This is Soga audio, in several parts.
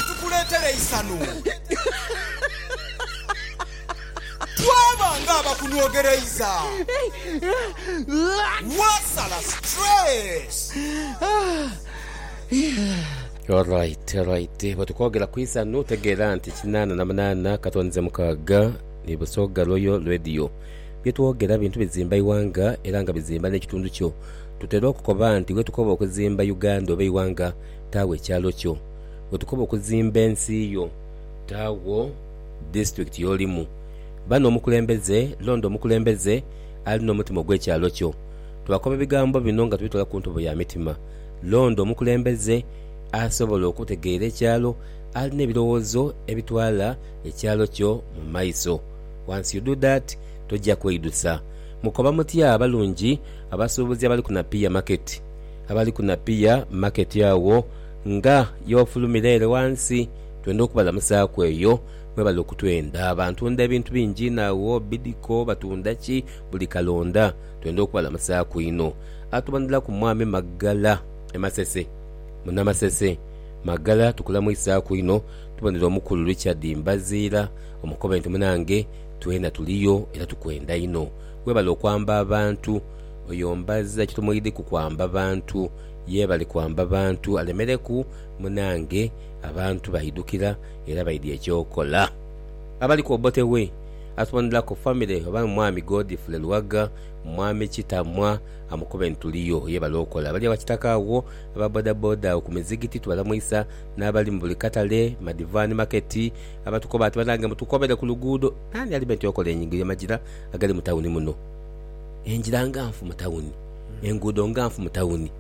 Tukuleetera eisanhu. Twaba ng'abakunhwogereiza. Wasala stress. Alright, alright. Bwe tukwogera ku isanhu tegeera nti kinaana na munaana katonize mukaaga ni Busoga Royal Radio. Bye twogera bintu bizimba ighanga era nga bizimba n'ekitundu kyo. Tutera okukoba nti wetukoba okuzimba Uganda oba eighanga, taagho ekyalo kyo. wetukoba okuzimba ensi yo, taagho disitulikiti y'olimu. Ba n'omukulembeze, londa omukulembeze ali n'omutima ogw'ekyalo kyo. Twakoba ebigambo bino nga tubitwala ku ntobo ya mitima. Londa omukulembeze asobola okutegeera ekyalo, alina ebirowoozo ebitwala ekyalo kyo mu maiso. Once you do that, toja kweidusa. Mukoba mutya abalungi abasuubuzi abali ku Napier Market? Abali ku Napier Market agho. Nga y'ofulumira ere ghansi, twenda okubalamusaaku eyo mwebali okutwenda. Bantunda ebintu bingi inho agho, bidiko, batunda ki, buli kalonda. Twenda okubalamusaaku inho. Atubanhilaku Mwami Magala e Masese. Muna Masese, Magala tukulamwisaaku inho. Tubonhera Omukulu Richard Mbaziira, omukobe nti munange twena tuliyo era tukwenda inho. Webale okwamba abantu. Oyo Mbaziira kye tumwidhi ku kwamba bantu. Ye bali kwamba bantu alemereku munaange, abantu baidhukira era baidhia eky'okola. Abaliku Obote we atuboneraku famire oba Mwami Godfrey Luwaga, Mwami Kitamwa amukube nti tuliyo. Ye bali okola bali awakitaka agho, aba bodaboda agho ku mizigiti tubalamwisa n'abali mu buli katale, madivani maketi abatukoba ati banange mutukobere ku luguudo. Naani alibe nti okola enyingo y'amagira agali mu tawuni muno? Engira nga nfu mu tawuni. Enguudo nganfu mu tawuni,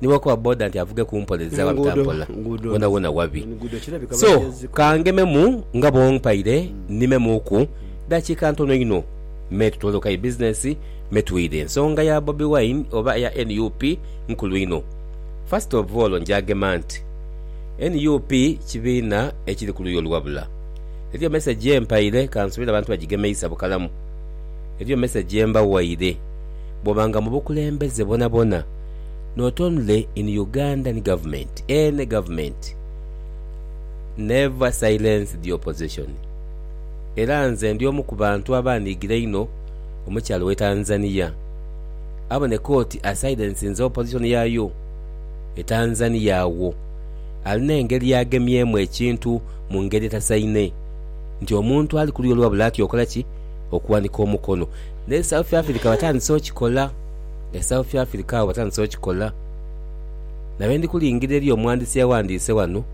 ni bw'okoba boda nti avuge ku mpola ezira wabita mpola, wonawona wabi. So, ka ngememu nga bw'ompaire nnimemuuku dakiika ntono inho me tutoolokayo bizinensi me twidhe. Ensonga ya Bobi Wine oba eya nup nkulu inho. First of all nja gema nti nup kibiina ekiri ku luuyi oluwabula. Eriyo mesegi ye mpaire, ka nsubire abantu bagigemeisa bukalamu. Eriyo mesegi ye mbawaire. bwoba nga mubukulembeze bwonabwona not only in Ugandan government any government never silence the opposition era nze ndi omu kubantu abanigira einho omukyala owe Tanzania aboneka oti asilensinze opposition yayo etanzania agho alina engeri yagemyemu ekintu mungeri etasaine nti omuntu ali kuluyi olwabula atya okola ki okuwanika omukono N'e South Africa batandise okikola, e South Africa agho batandise okikola. Na bwe ndi kulingirira eriyo omughandisi eyaghandiise ghano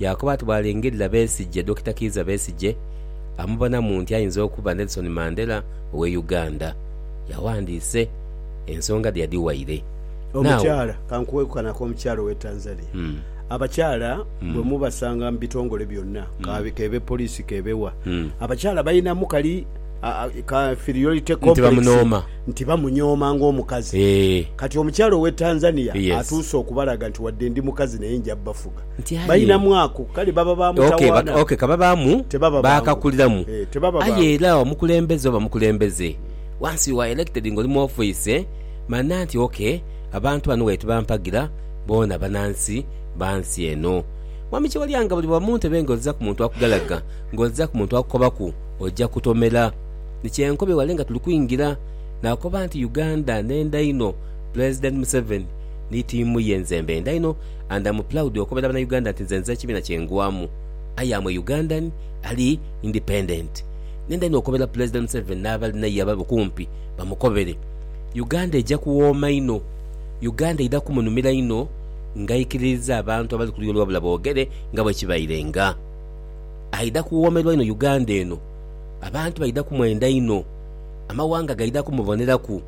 yaakoba ati bw'alingirira Besigye, Dokita Kiiza Besigye amubonamu nti ayinza okuba Nelson Mandela ow'e Uganda. Yaghandiise, ensonga dhe yadhiwaire. Now. Omukyala, ka nkuwe ku kano ak'omukyala ow'e Tanzania. Abakyala bwe mubasanga mu bitongole byonna, k'abe, k'ebe poliisi, k'ebe wa, abakyala balinamu kali, nti bamunooma, nti bamunyooma ng'omukazi. Kati omukyala ow'e Tanzania atuuse okubalaga nti wadde ndi mukazi naye nja bafuga. Balinamu ako, kale baba ba mutawaana. Ok, ka babaamu, baakakuliramu. Aye era omukulembeze oba mukulembeze, once you are elected ng'oli mu ofiisi, manya nti ok, abantu bano waire tibampagira, boona banansi ba nsi eno. Mwami Kyewalyanga buli bwa mu ntebe ng'ozza ku muntu akugalaga, ng'ozza ku muntu akukobaku, Oja kutomera. Ni kyenkobe wale nga tuli kwingira nakoba nti Uganda nenda inho Pulezidenti Museveni ni tiimu ye nze mbenda inho and am proud okobera bana Uganda nti nze nze ekibina kyengwamu I am a Ugandan ali independent nenda inho okobera Pulezidenti Museveni nabali naye ababe kumpi bamukobere Uganda eja kuwooma inho Uganda eidha kumunumira inho ngaikiririza abantu abali kuluyi olwobula bogere nga bwekibaire nga Aidha kuwoomerwa inho Uganda eno. Abantu baidha kumwenda inho. Amawanga gaidha kumuboneraku.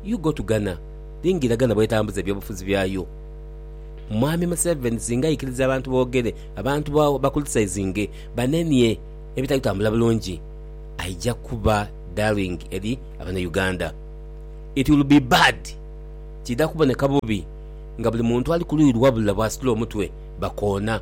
You go to Ghana, lingira Ghana bwetambuza ebyobufuzi byayo. Mwami Museveni singa aikiriza abantu boogere, abantu ba bakulitisayizinge, banenie ebitali kutambula bulungi, aija kuba darling eri abanauganda. It will be bad. Kiidha kuboneka bubi nga buli muntu ali kuluyi lwabula bwasitula omutwe bakoona.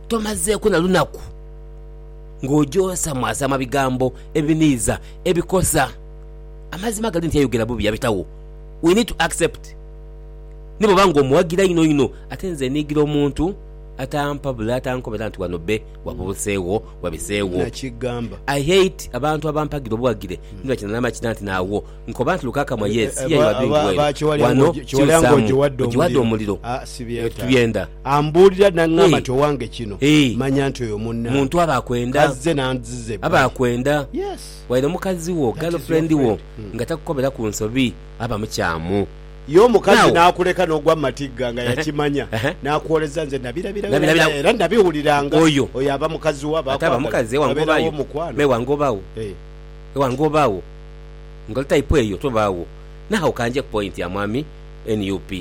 Tomazeeku na lunaku ng'ojoosamwasama bigambo ebiniiza ebikosa. Amazima gali nti ayogera bubi yabitagho, we need to accept. Ni bw'oba ng'omuwagira inho inho ate nze niigira omuntu atampabula atankobera nti wano bbe wabubuseegho, wabiseegho. I hate abantu abampagira obuwagire ni bakina n'amakina nti naagho. Nkoba nti lukakamwa yes iya iwa bintu wena wano kiusamu ojiwade omuliro ebyo titubyenda eeh muntu aba akwenda aba akwenda waire mukazi wo girl friend wo nga takukobera ku nsobi aba mukyamu oyo ate aba mukazi ewangobayo me ewangobawo ewangobawo nga oli type eyo tobaagho nagho ka nje ku point ya mwami nup.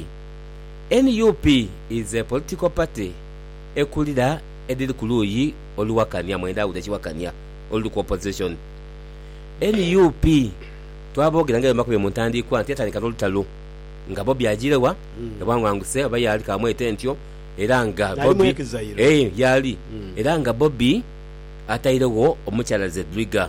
Nup is a political party ekulira edhiri ku luuyi oluwakania mwenda awude ekiwakania oluli ku opposition. Nup twaboogera nga bye mbakombye mu ntandiikwa nti yatandika n'olutalo nga Bobi ajiire wa e Bwangwanguse oba yaali kamwete ntyo era nga Bobi eeh yaali era nga Bobi atairegho omukyala Zedriga.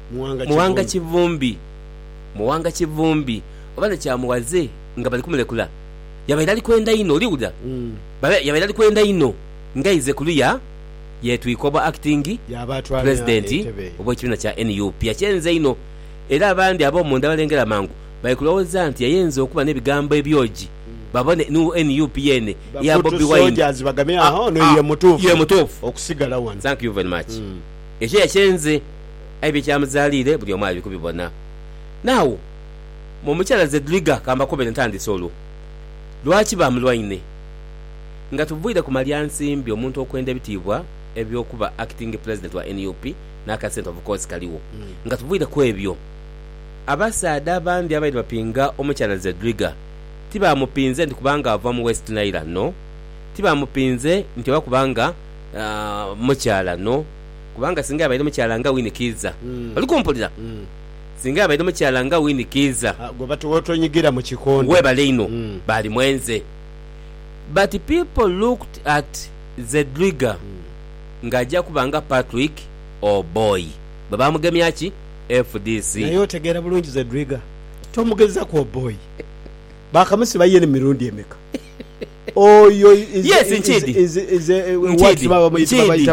Muwanga Kivumbi. Muwanga Kivumbi oba ni Kyamughaze nga bali kumulekula, yabaire ali kwenda inho, oli wulira, yabaire ali kwenda inho ng'aize kuluya yeetwika obwa Acting President obw'ekibiina kya nup. Yakyenze inho era abandi ab'omunda abalengera amangu bali kulowooza nti yayenze okuba n'ebigambo ebyogi babone ni nup yeene eya Bobi Wine ye mutuufu okusigala ghano. Ekyo yakyenze, aye bye kyamuzaaliire buli omu ali kubibona. Now, mu mukyala Zedriga ka mbakobere ntandise olwo lwaki baamulwaine. Nga tuviire ku malya nsimbi omuntu okwenda ebitiibwa eby'okuba Acting President wa nup n'aka sente of course kaligho, nga tuviire ku ebyo, abasaadha abandi abaire bapinga omukyala Zedriga tibaamupinze nti kubanga ava mu West Nile no, tibaamupinze nti oba kubanga. mukyala no kubanga singa abaire mukyala nga Winnie Kiiza. Oli kumpulira? Singa abaire mukyala nga Winnie Kiiza. Gwe bati wotonyigira mu kikondo. Webale inho Balimwenze. But people looked at Zedriga nga aja kuba nga Patrick Oboi bwe bamugemya ki fdc. Naye otegeera bulungi Zedriga? Tomugezaku Oboi. Baakamusiba ye emirundi emeka? Yes, nkiidhi. Nkiidhi. Nkiidhi.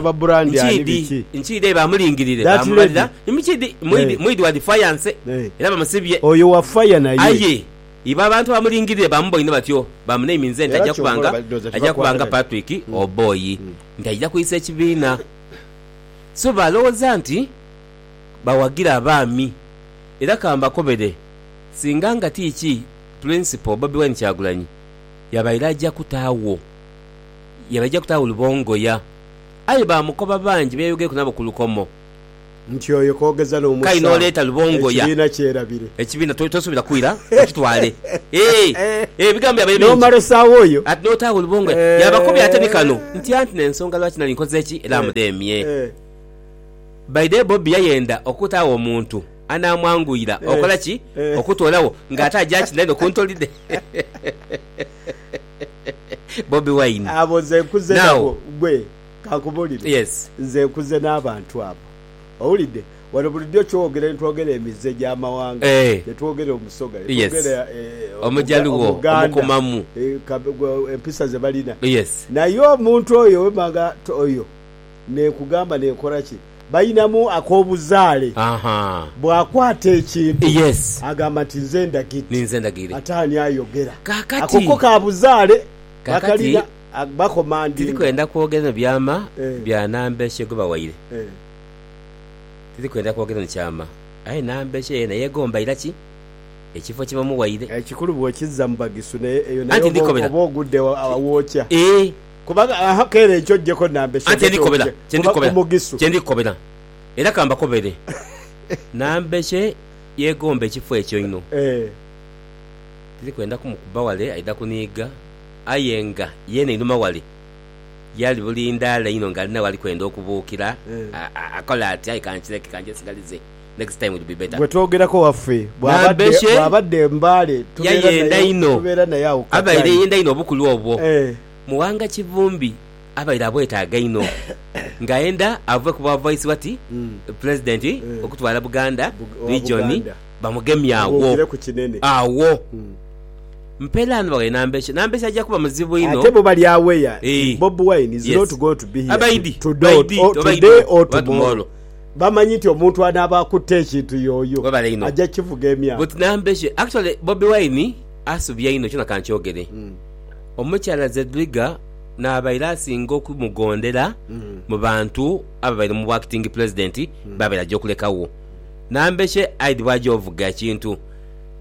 Nkiidhi. Nkiidhi aye bamulingirire, baamubalira. Nkiidhi, mwidhi, mwidhi wa defiance, era bamusibye. Aye ibo abantu abamulingirire baamubowa inho batyo, baamunaiminze nti aja kuba nga, aja kuba nga Patrick Oboi, nti aija kwisa ekibiina. So baalowoza nti bawagira abaami. Era ka mbakobere, singa nga ti ki Principal Bobi Wine Kyagulanyi, yabaire aja kutaagho yabaire aja kutaagho Lubongoya. Aye baamukoba bangi be yayogereku nabo ku lukomo. Nti oyo koogeza Kale n'omusawo n'oleeta Lubongoya ekibiina kyerabire. ekibiina to, tosuubira kwira okitwale. Eeh, eeh, ebigambo byabaire bingi. N'omala osaagho oyo. Ati n'otaagho Lubongoya. Yaabakobya ate ni kano Eeh. nti, Anti n'ensonga lwaki nali nkoze ki? Era Eh, mudheemye. eh. By day Bobi yayenda okutaagho omuntu. anaamwanguyira okola ki? Okutoolawo ng'ate aja kina inho ku ntoli dhe. Bobi Wine. Abo nze nkuze nabo. Ggwe kankubulire. Yes. Nze nkuze n'abantu abo. Owulidde? Wano bulijo ky'owogera ne twogera emize gy'amawanga, ne twogera Omusoga, ne twogera Omujaluwo, Omuganda, empisa ze balina. Naye omuntu oyo wemanga oyo. n'ekugamba n'ekola ki? Balinamu ak'obuzaale. Bw'akwata ekintu agamba nti, Nze ndagidde. Ate ani ayogera? Ako ko ka buzaale. Bakalina, bakomandinga. Tiri kwenda kwogera eno byama bya namba ki gwebawaire. Tiri kwenda kwogera eno kyama. Aye namba ki eyo naye egomba ira ki? Ekifo kye bamuwaire. Ekikulu bw'okizza mu bagisu naye eyo nayo oba ogudde awookya. Atenhi ndikukobera kye ndikukobera, kye ndikukobera, era ka mbakobere. Nambeshe yeegomba ekifo ekyo inho. Tiri kwenda kumukuba wale aidha kuniiga, aye nga yeene einhuma wale y'ali bulindaala inho ng'alinagho ali kwenda okubuukira. Akole ati, Aye kankireke, kanjesigalize. next time will be better. Gwe twogerako waffe Nambeshe bwaba adda e Mbale tubeera naye awo ku katale. Abaire yenda inho obukulu obwo. Muwanga Kivumbi abaire abwetaaga inho nga ayenda ave ku bwa Vice wati Pulezidenti okutwala Buganda Region bamugemye agho. Agho. Mperaano baghaire Nambeshe. Nambeshe aja kuba muzibu inho. Ate bo bali aware nti Bobi Wine is not going to be here today or tomorrow. bamanyi nti omuntu anaaba akutte ekintu yooyo Webale inho aja kivuga emyaka. But Nambeshe actually Bobi Wine asubya inho kyona kankyogere omukyala Zedriga nabaire asinga okumugondera mubantu ababaire mu bwa acting president babaire aja okuleka wo Nambeshe I'd bwaja ovuga ekintu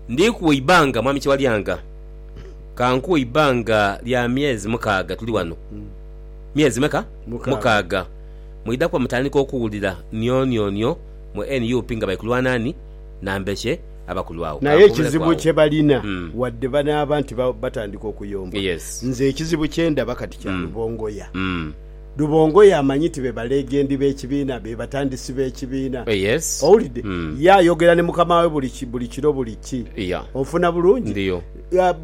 ndikuwa eibanga mwami Kyewalyanga kankuwe eibanga lya myezi mukaaga tuli wano myezi meka? mukaaga. Mwidha kuba mutandika okuwulira nionionio mu nup nga bali kulwana ni Nambeshe aba kulwagho. Naye ekizibu kye balina wadde banaaba nti batandika okuyomba, nze ekizibu kye ndaba kati kya Lubongoya. Lubongoya amanyi nti be balegendi b'ekibiina, be batandisi b'ekibiina. Owulidde? Ye ayogera ne mukama we buli kiro buli ki. Onfuna bulungi?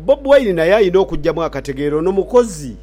Bobi Wine naye alina okujjamu akategeera ono mukozi.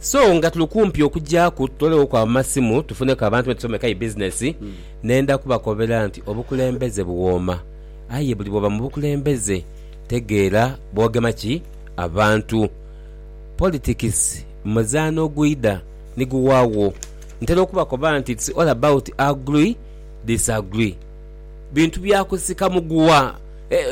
So nga tuli kumpi okugyaku tutoleghoku amasimu tufuneku abantu be tusomeka aye bizinesi. Nenda kubakobera nti obukulembeze buwooma aye buli bw'oba mu bukulembeze tegeera bw'ogema ki abantu. Politikisi muzaano ogwidha ni guwaagho. Ntera okubakoba nti it's all about agree, disagree. Bintu bya kusika muguwa.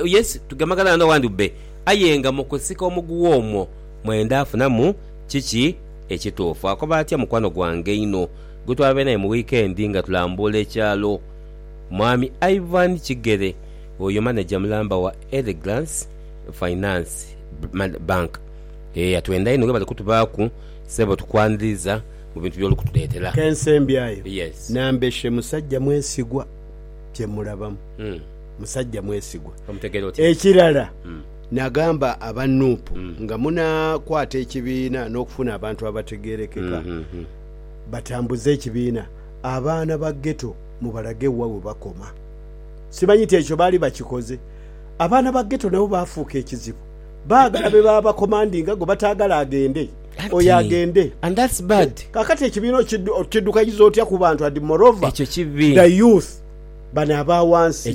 Yes tugemagana wano awandi bbe aye nga mu kusika omuguwa omwo, Mwenda afunamu kiki ekituufu. Akoba atya mukwano gwange einho gwe twabaire naye mu wiikendi nga tulambuula ekyalo? Mwami Ivan Kigere, oyo maneja mulamba wa Elegance Finance Bank. Eeh atwenda inho webale kutubaaku ssebo tukwaniriza mu bintu byoli kutuleetera. Kensembyayo Yes. nambeshe musajja mwesigwa kyemulabamu. Musajja mwesigwa. Omutegeera otya? Ekirala. Naagamba aba nup nga munaakwata ekibiina n'okufuna abantu abategeerekeka batambuze ekibiina, abaana ba Ghetto mubalage wa we bakoma. Simanyi nti ekyo baali bakikoze. Abaana ba Ghetto nabo baafuuka ekizibu. Baagala be baba bakomandinga, gwe bataagala agende. Oyo agende. Kaakati ekibiina okiddukanyiza otya ku bantu and moreover the youth bano aba wansi.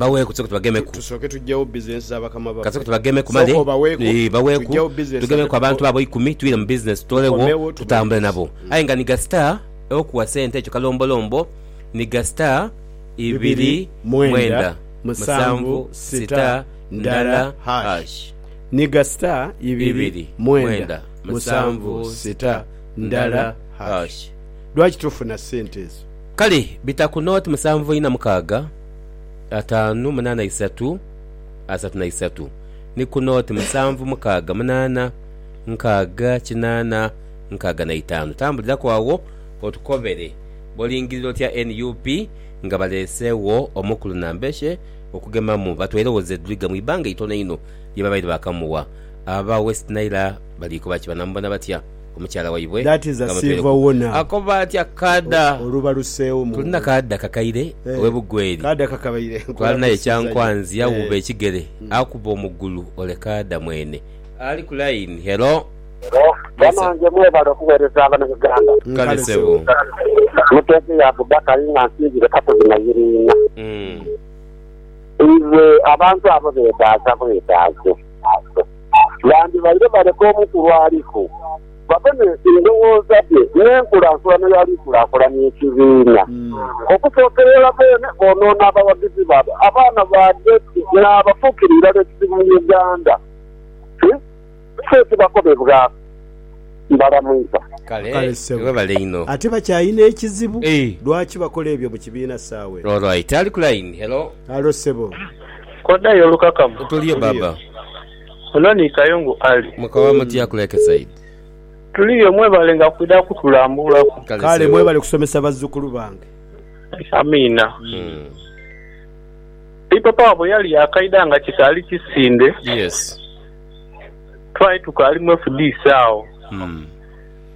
Baweeku, tusooke tubagemeku. Kasooke tubagemeku male, ee, baweeku, tugemeku abantu abo eikumi, twire mu bizinesi, tutolewo, tutambule nabo. Aye nga ni gasita okuwa sente ekyo kalombolombo ni gasita ibiri mwenda musanvu sita ndala hash, ni gasita ibiri mwenda musanvu sita ndala hash. Lwaki tufuna sente ezo? Kale bita ku nooti musanvu ina mukaaga, ataanu munaana isatu, asatu na isatu, ni ku nooti musanvu mukaaga munaana, nkaaga kinaana, nkaaga na itaanu. Tambuliraku agho otukobere bw'olingirira otya nup nga baleeseegho omukulu Nambeshe okugemamu batweerewo Zedriga mu ibanga itono inho lye babaire baakamuwa. Aba West Nile baliikoba ki? Banaamubona batya? omukyala waibwe nga mutwereku akoba atya kaada tulina kaada kakaire owe Bugweri twalinayo kyankwanzi yawuuba ekigere akuba omugulu ole kaada mwene ali ku line hello. Banange mwebale okuwereza abana Uganda. Kale sebo. Muteege ya Abubakari nga nsinzire kasozi Nayiriina. Iwe abantu abo bedaaza bwedaaze. ghandibaire baleka omukulu aliku babe n'endhoghoza dhe n'enkulaankulana y'ali kulaakulanya ekibiina. Okusookera irala beene boonoona abawagizi baabwe, abaana ba Betty n'abafuukira irala ekizibu mu Uganda. Kiki ekibakobebwaku? Mbalamwiza. Kale, Kale ssebo. webale inho. Ate bakyalina ekizibu? Eeh. Lwaki bakola ebyo mu kibiina saawa eno? Alright, ali ku line. Hello. Halo ssebo. K'odhayo olukakamu. Tuliyo Baba. Ono ni Kayongo Ali. Mukoba mutya ku Lakeside? Tuliyo, mwebalenga kwidha kutulambulaku. Kale mwebale kusomesa bazzukulu bange. Amiina. Ipapa wabwe yali yakaidha nga kikaali kisinde. Yes. Twali tukaali mu fdc agho.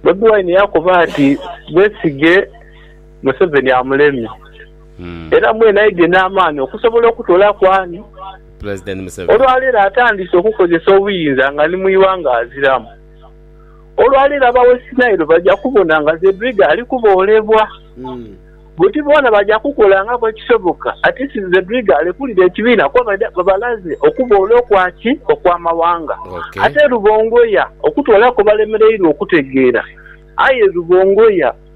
Bobi Wine yakoba ati, Besigye Museveni amulemye. era mwene aidhye n'amaani okusobola okutolaaku ani olwaleero atandise okukozesa obuyinza nga ni mu ighanga aziramu. Olwaleero aba West Nile baja kubona nga Zedriga ali kuboolebwa. Buti boona baja kukolangaku ekisoboka ati Zedriga alekulire ekibiina kuba baidha babalaze okuboola okwa ki? Okw'amawanga. Ate Rubongoya okutwalaku balemereirwe okutegeera. Aye Rubongoya.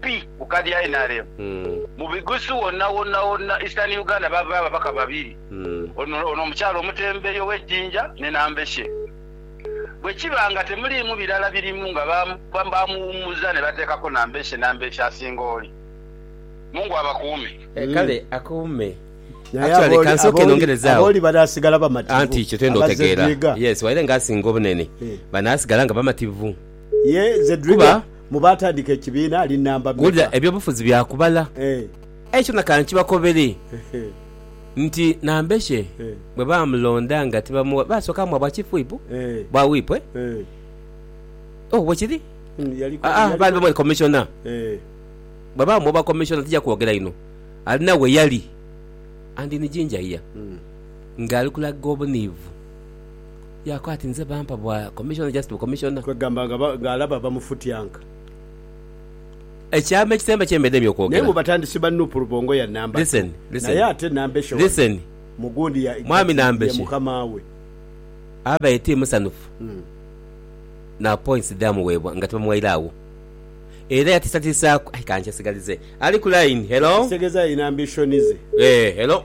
pi kukadi ya nrm mubigusu wona wona wona Eastern Uganda bavayo ababaka babiri ono ono omukyala omutembeyi owe jinja ne nambeshe bwekiba nga temulimu birala birimu nga bamuwumuza nebatekako nambeshe nambeshe asinga oli mungu abakuume. Kale akuume. Naye aboli aboli banasigala bamativu abazedwiga. Yes waire nga asinga obunene banasigala nga bamativu. kuba wulira eby'obufuzi bya kubala. Aye kyona ka nkibakobere nti nambeshe bwe baamulonda nga tibamuwa, baasooka muwa bwa wipu, e? Oh, bwe kiri. Aa, baali bamweta komishona. Bwe baamuwa obwa komishona, tija kwogera inho, alina we yali, and in ginger here, ng'ali kulaga obuniivu. Yaaku ati, Nze bampa bwa Commissioner, just bu Commissioner. Kwegamba nga ng'alaba bamufutyanka. Ekyama ekisemba kye mbedemu okwogera. Naye mu batandisi ba Nup Rubongo ya namba two. Listen, listen. Naye ate Nambeshe wano Listen. mu gundi ya Mwami kati ye Nambeshe. mukama we. Abaire ti musanhufu na points edhaamuweebwa nga tibamuwaire agho. Era yatiisatiisaaku. Aye ka nkyesigalize. Ali ku line, hello? Ekitegeeza alina ambition ze. Eeh, hello?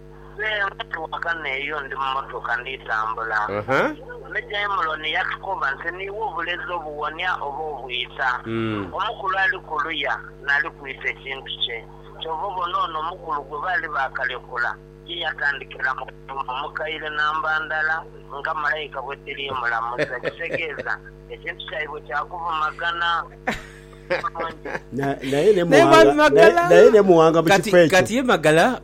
Nze ndi ghagano eyo ndi mu mmotoka ndi tambula. Me Daimuloni yatukoba nti, Niiwe obulezi obuwonia oba obwita? Omukulu ali kuluya n'ali kwita ekintu kye. Kyova obona ono omukulu gwe baali baakalekula, ye yatandikira mu kuyumba mukaire namba ndala nga malaika bwe dhiri mulamuza, ekitegeeza ekintu kyaibwe kya kuvumagana bulungi. Naye mwami Magala kati ye Magala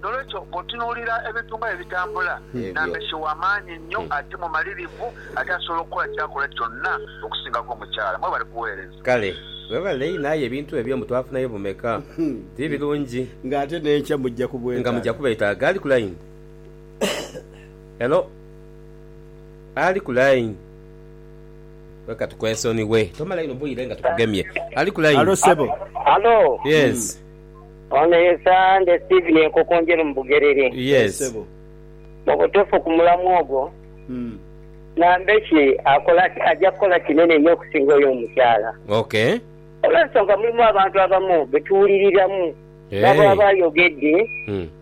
N'olwekyo, bw'otunuulira ebintu nga bwe bitambula, Nambeshe wa maanyi nnyo ate mumalirivu, ate asobola okukola ky'akola kyonna okusingako omukyala. Mwebale kuweereza. Kale webale inho aye ebintu ebyo mbu twafunayo bumeka ti birungi nga ate nenkya mujja kubwetaaga nga mujja kubwetaaga ali ku line hello ali ku line leka tukwesoniwe tomala inho bwire nga tukugemye ali ku line Halo sebo. Halo. Yes. Ono ye Sande Steven Enkokonjeru mu Bugerere. Yee sebo. Mubutufu ku mulamwa ogwo Nambeshe akola aja kukola kinene nyo okusinga oyo omukyala. Ok. Olwensonga mulimu abantu abamu betuwuliriramu nabo aba ayogedde.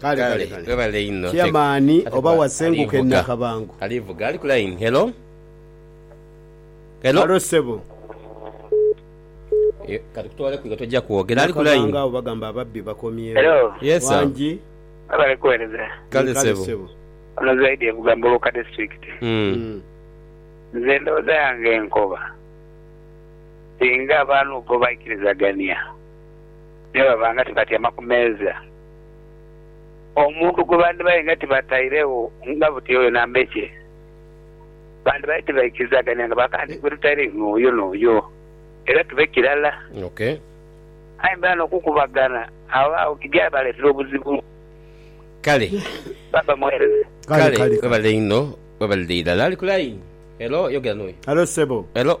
Kale, kale, webale inho. Chairman oba wasenguka e Nakabango. Ali vuga, ali ku line. Hello? Hello? Haro sebo. Kati kutwale kwiga tojja kwogera. Ali ku line. Nakabango abo bagamba ababbi bakomyewo. Hello? Yes sir. Wangi. Webale kuwereza. Kale sebo. Ono Zaidi evuga Muluka district. Nze endowooza yange nkoba singa abantu bo baikiriza gania. me baba nga tibatyama ku meeza, omuntu gwe bandibaire nga tibatairegho nga buti oyo nambe kye, bandibaire tibaikirizagania nga bakaaba nti, gwe tutaire inho oyo n'oyo, era tube kirala. Okay. Aye mbeera n'okukubagana, agho agho ki byabaleetera obuzibu. Kale. Baba mwereza. Kale, Kale, kale. webale inho. Webalire irala. Ali ku line. Hello, yogera n'oyo. Halo ssebo. Hello.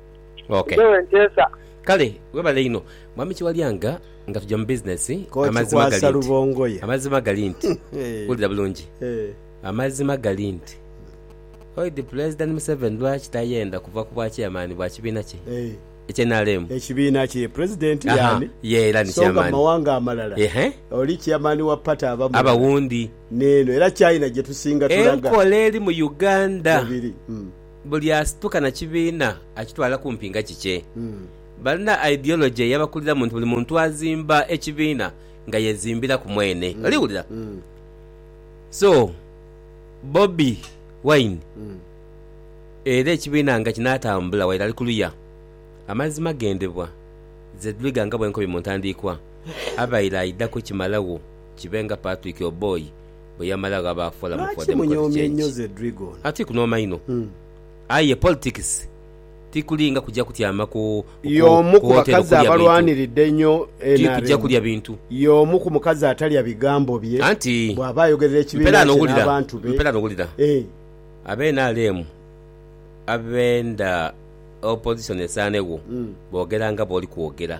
Okay. Nze wenteesa. Kale webale inho mwami Kiwalyanga nga tuja mu business amazima galinti amazima galinti wulira bulungi amazima galinti oidi pulezidenti Museveni lwaki tayenda kuva ku bwa chairman bwa kibiina kye ekye nrm ekibiina kye pulezidenti yani ye era ni chairman songa mawanga amalala ehe oli chairman wa party aba mulala aba wundi neno era China gyetusinga tulaga enkola eri mu Uganda webiri mm. Buli asituka na kibiina akitwala kumpi nga kikye. Balina ideology eyabakuliramu nti buli muntu azimba ekibiina nga yezimbiraku mwene. Oli wulira? So, Bobi Wine era ekibiina nga kinatambula waire ali kuluya. Amazima gendebwa Zedriga nga bwenkobye mu ntandiikwa, abaire aidha kukimalagho kibe nga Patrick Oboi. bwe yamala ghaba Forum for Democratic Change. Atiku n'omaino. Aye politics tikuli nga kuja kutyama ku wotero kulya bintu. Ti kuja kulya bintu. Anti mpera n'owulira, mpera n'owulira aba nrm abenda opposition esaanegho boogera nga bwoli kwogera.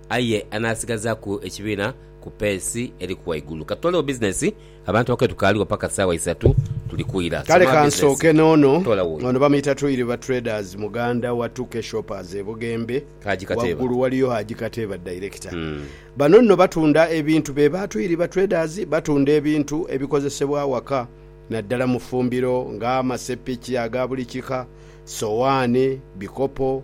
Aye anaasigazaaku ekibiina ku peesi eri ku waigulu. Ka tutolewo bizinesi, abantu abakulu tukaaliwo paka saawa isatu tuli kwira. Kale Soma bizinesi. kansooke n'ono. Toola wuuyo. Ono bamuyita Twiriba Traders muganda wa Tuke Shoppers e Bugembe. Haji Kateeba. Waggulu waliyo Haji Kateeba dayirekita. Bano nno batunda ebintu be ba Twiriba Traders batunda ebintu ebikozesebwa awaka naddala mu ffumbiro nga amaseppiki aga buli kika, sowaani, bikopo,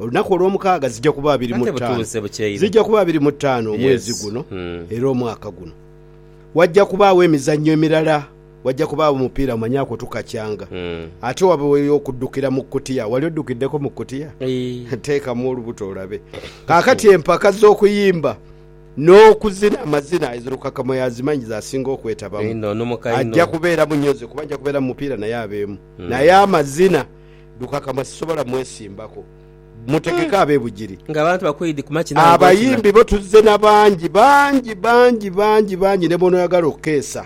Olunaku olwomukaaga zija kuba abiri mu taano, zija kuba abiri mu taano omwezi guno era omwaka guno waja kubaagho emizanyo emirala, waja kubaagho omupiira manya kwo tukakyanga ate wabeeyo okudukira mu kutiya. Wali odukiddeko mu kutiya? Teekamu olubuto olabe. Kaakati empaka z'okuyimba n'okuzina amazina ezo Lukakamo y'azimanyi z'asinga okwetabamu. Aja kubeeramu nyo nze kuba nja kubeera mu mupiira naye abeemu. Naye amazina. Lukakama sisobola mwesimbako. Mutegeke abe Bugiri. Nga abantu bakwidhi ku makina ago gookina. Abayimbi bo tuzze na bangi, bangi, bangi, bangi, bangi ne bw'onooyagala okukeesa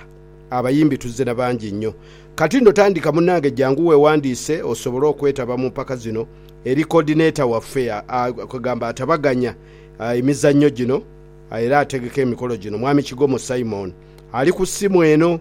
abayimbi tuzze na bangi nnyo. Kati nno tandika munnange jangu weewandiise osobole okwetaba mu mpaka zino eri Coordinator waffe kwe gamba atabaganya emizannyo gino era ategeka emikolo gino Mwami Kigomo Simon ali ku ssimu eno.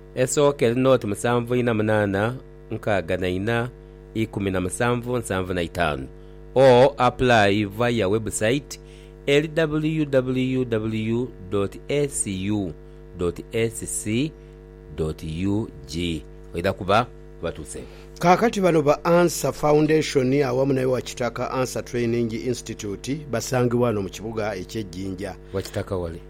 Esooka eri noti musanvu ina munaana nkaaga na ina ikumi na musanvu nsanvu na itaanu or apply via website eri www.acu.ac.ug oidha kuba obatuuseeku. Kaakati bano ba Ansah Foundation awamu ne Wakitaka Ansah Training Institute basangibwa wano mu kibuga ekye Jinja. Wakitaka wali?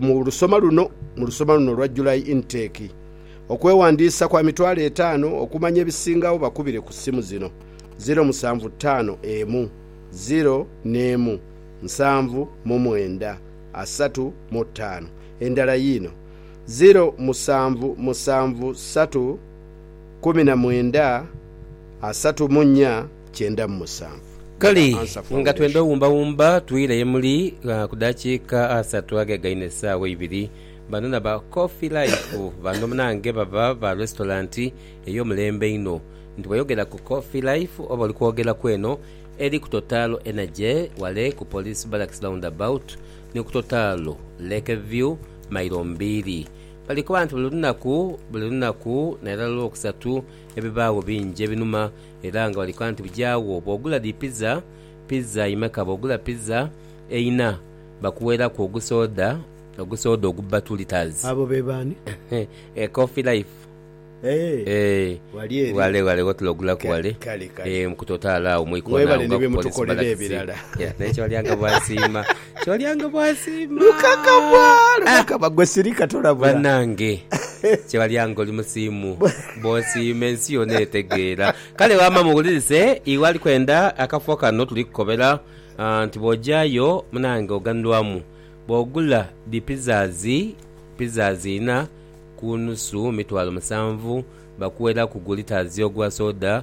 Mu lusoma luno, mu lusoma luno olwa July Intake, okwewandiisa kwa mitwalo etaano. Okumanya ebisingagho bakubire ku simu zino, ziro musanvu taano emu, ziro n'emu, nsanvu mu mwenda, asatu mu taano. Endala yiino, ziro musanvu musanvu satu, kumi na mwenda, asatu mu nya, kyenda mu musanvu. Kale nga twenda owumbawumba, twire ye muli ku dakiika asatu agegaine esaawa eibiri. Bano na ba Coffee Life bano munange baba ba restaurant ey'omulembe einho. Nti bwoyogera ku Coffee Life oba oli kwogera ku eno eri ku Total Energy wale ku Police Barracks Roundabout ni ku Total Lake View mailo mbiiri. Balikoba nti buli lunaku, buli lunaku nairala Lwokusatu ebibaagho bingi ebinuma. Era nga bali kola nti bijaagho bwogula dhi pizza, pizza imeka bwogula pizza eina bakuweraku ogusoda, ogusoda ogubba two litres. Abo be baani? Eeh Coffee Life Eeh wali eeh eri. ghale ghale wotula ogulaku ghale Kale kale. eeh mu ku totale agho mu ikoona agho Mwebale ni bye mutukolera ebirala. Naye kyolyanga bwasiima. Kyolyanga bwasiima. Lukakabwa lukakabwa gwe sirika tolabula. Banange kyolyanga oli musiimu bwosiima ensi yona etegeera. Kale wama muwulirise iwe ali kwenda akafo kano tuli kukobera nti bwojayo munange oganulwamu bwogula dhi pizzas pizzas ina kunusu mitwalo musanvu bakuweraku gu litres ogwa soda